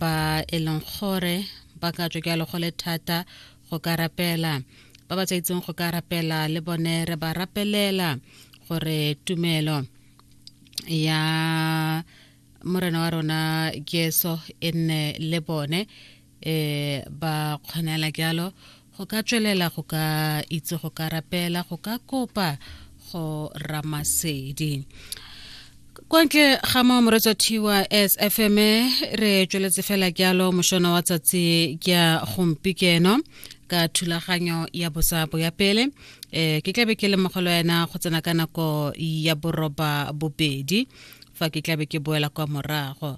ba e leng gore ba ka tswa ke a legole thata go ka rapela ba ba sa itseng go ka rapela le bone re ba rapelela gore tumelo ya morena wa rona jesu e nne le bone um ba kgonela jalo go ka tswelela go ka itse go ka rapela go ka kopa go ramasedi kwa ntle ga mo moretso thiwa s f m re tsweletse fela jalo mošono wa tsatsi ke ya gompikeno ka thulaganyo ya bosabo ya pele um ke tlabe ke lemogelo yena go tsena ka nako ya boroba bobedi fa ke tlabe ke boela kwa morago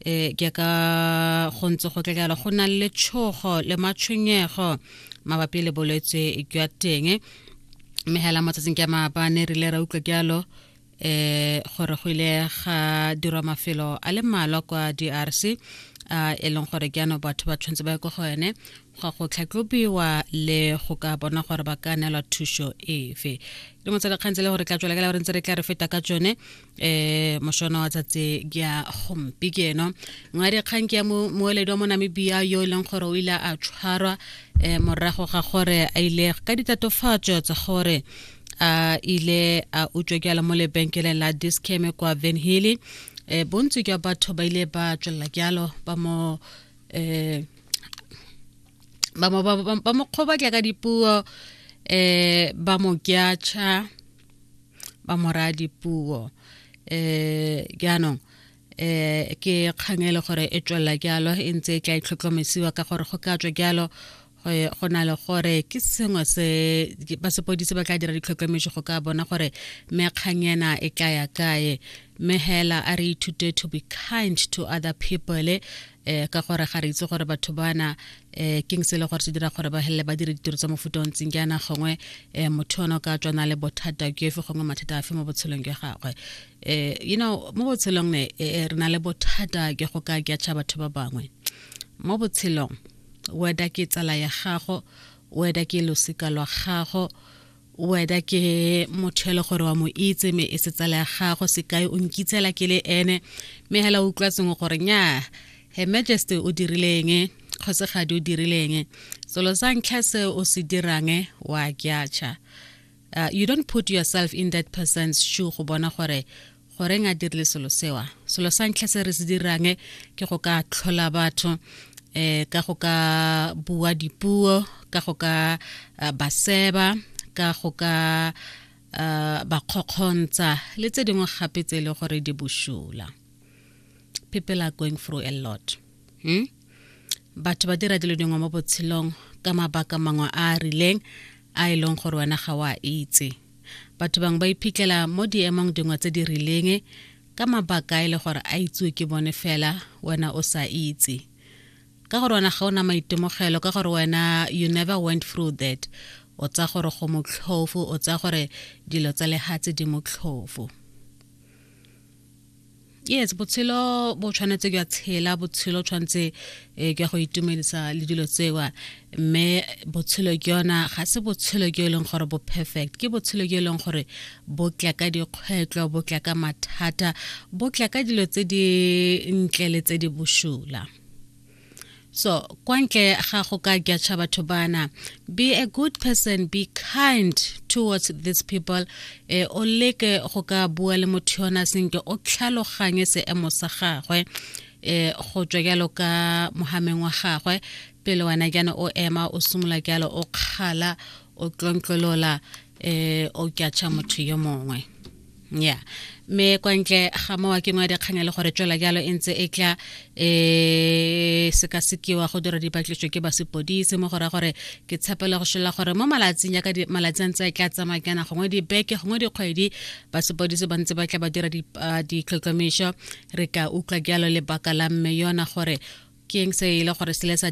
e ke ka go ntse go tlekala go na le tshogo le matshwenyego mabapi le bolwetse jwa teng mme hela motsatsing ke maabane re ile ra utlwa jalo eh gore go ile ga dirwa mafelo a le mmalwa kwa drc a e leng gore ke ano batho ba tshwanetse ba ye ko go ene go go tlhatlobiwa le go ka bona gore ba ka neelwa thuso efe le motsalekgang tse le gore tla tswela ka le gore ntse re tla re feta ka tsone eh moshona wa tsatse ke ya gompi ke eno ngwadi kgang ke ya moeledi wa mo namibia yo e leng gore o ile a tshwarwa um morago ga gore a ile ka ditatofatso tsa gore a ile a utswa ke ala mo lebenkeleng la discame kwa venhilly um bontsi ke batho ba ile ba tswelela kealo ba mo um ba mo kgoba ke ka dipuo um ba mo kyacha ba moradi puo eh jaanong eh ke kgang e le gore e tswelela jalo e ntse e tla itlhotlhomisiwa ka gore go ka tswa jalo go na le gore ke sengwe se ba sepodise ba tla dira ditlhotlhometso go ka bona gore mekgang ena e tla ya kae mme hela a re ithute to be kind to other people eh ka gore ga re itse gore batho bana eh king se le gore se dira gore ba helele ba dire ditiro tsa mofuta o ntseng ke ana gongwe eh motho ono ka tswana le bothata ke efe gongwe mathata afe mo botshelong jwa gagwe eh you know mo botshelong ne eh, eh, re na le bothata ke go ka ke batho ba bangwe mo botshelong weda ke tsala ya gago weda ke losika lwa gago weda ke motho ele gore wa mo itse me e setsala ya gago sekai o nkitsela ke le ene me hela o utlwatseng gore nya her majesty o dirileng kgosegadi o dirileng selo sa ntlha se o se dirang wa kyacha uh, you don't put yourself in that person's shoe go bona gore goreng a dirile selo sewa selo sa ntlha se re se dirang ke go ka tlhola batho um ka go ka bua dipuo ka go ka eh, ba seba ka go ka eh, ba kgokgontsa le tse dingwe gape tse e le gore di bošula people are going through a lot hmm? batho ba dira dilo dingwe mo botshelong ka mabaka mangwe a a rileng a e leng gore wena ga o a itse batho bangwe ba iphitlhela mo diemong dingwe tse di rileng ka mabaka e le gore a itsewe ke bone fela wena o sa itse ka gore wena ga ona maitemogelo ka gore wena you never went through that o tsa gore go motlhofu o tsa gore dilo tsa lehatse di motlhofu yes botshelo bo tshwanetse ke a tshela botshelo tshwanetse eh, ke go itumedisa le dilo tsewa mme botshelo ke yona ga se botshelo ke e leng gore bo perfect ke botshelo ke e leng gore bo tla ka dikgwetlho bo tla ka mathata bo tla ka dilo tse di ntle le tse di boshula so kwa ntle ga go ka jatsha batho bana be a good person be kind towards these people eh, o leke go ka bua le motho yona senke o tlhaloganye seemo sa gagwe eh, go tswa jalo ka mogameng wa gagwe pele wena jana o ema o simolola jalo o kgala o tlontlolola eh o kyatšha motho yo mongwe ya me kwa ntle ga mowa ke ngwa dikganya le gore tswela jalo e ntse e tla um sekasekiwa go dira dipatliso ke ba sepodise mo gore gore ke tshepele go šola gore mo malatsing yaka malatsi a ntse a tla tsamaya kana gongwe dibeke gongwe dikgwedi ba sepodise ba ntse ba tla ba dira ditlhotlhomišo re ka utlwa jalo lebaka la mme yona gore ke eng se e le gore se le sa